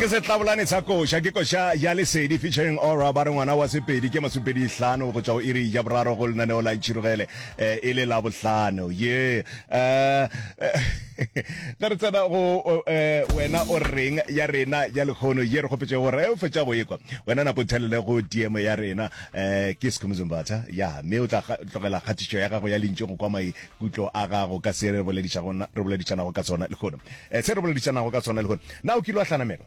ke setlabolane sa koša ke koša ya lesedi featuring ora ba re ngwana wa sepedi ke masupedi hlano go tšwa go iri ya boraro go lenaneo la itšhirogele eh, e le la bohlano ye eh, ge re tsena go eh, wena o reng ya rena ya lekgono ye re kgopetse gore o fetša go ekwa wena nako thelele go tmo ya rena um ke sekhomozombatha ya mme o tla tlogela kgatišo ya gago ya lentši go kwa mai Ke tlo aga go ka se re boledišago, na, re boledišanago ka sona lehono, se re boledišanago ka sona lehono. Na o kile wa hlanamelwa?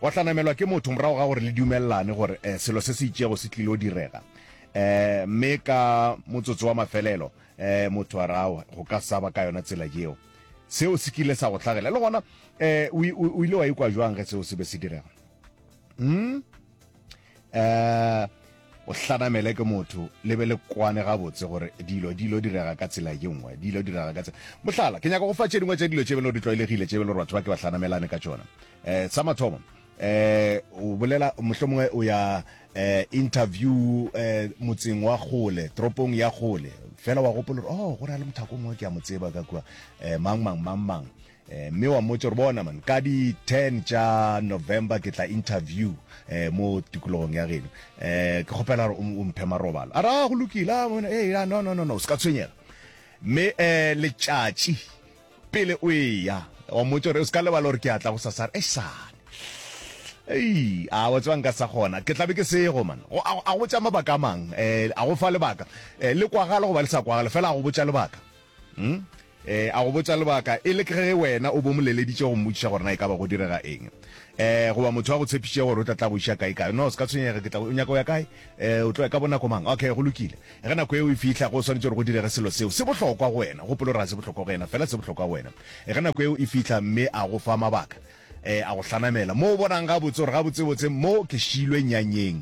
Wa hlanamelwa ke motho morago ga gore le dumelelane gore selo se se itšego se tlilo direga, mme ka motsotso wa mafelelo motho a re, Aowa, go ka sa ba ka yona tsela yeo. Seo se kile sa go hlagela. Le gona o ile wa ikwa bjang ge seo se be se direga? Umm. eh o hlanamele ke motho le be le kwane gabotse gore dilo dilo direga ka tsela ye nngwe dilo direga ka tsela mohlala ke nyaka go fa tše dingwe tša dilo tše belo di tlwaelegile tše belo gore batho ba ke ba hlanamelane ka tšona um sa mathomo eh o bolela mohlomongwe o ya eh interview eh motseng wa gole tropong ya gole fela wa gopola gore oh go na le mothakong wa ke a mo tseba ka kwa eh mang mang mang mang Eh, mme wa mmotse gore bona man ka di 10 tša november ke tla interview eh, mo tikologong ya geno eh, ke kgopela gore o mphe marobalo a ra ah, go lokile ah, eh, ah, no no no no se ka tshwenyega mme eh, letšatši pele o eya wa mmotse gore o se ka lebala gore ke atla go sasare e sane ei a wa tsebang ka sa gona ke tlabe ke sego man a go tša mabaka a mang um a go fa lebaka um le kwagale goba le sa kwagale fela a go botša lebaka Hmm? E, a go botša lebaka e le ke ge wena o bo mo leleditše go mmotšiša gore na e ka ba go direga eng e goba motho wa go tshepišitše gore o tla tla go iša kae kae no se ka tshwenyega ke tla o nyaka o ya kae e o tlo ya ka bonako mang okay go lokile ge nako eo e fihla go swanetše gore go direge selo seo se bohlokwa go wena gopolo ra se bohlokwa go yena fela se bohlokwa go wena e ge nako eo e fihla mme a go fa mabaka e a go hlanamela mo o bonang ga botse gore ga botsebotse mo ke šilwe nyanyeng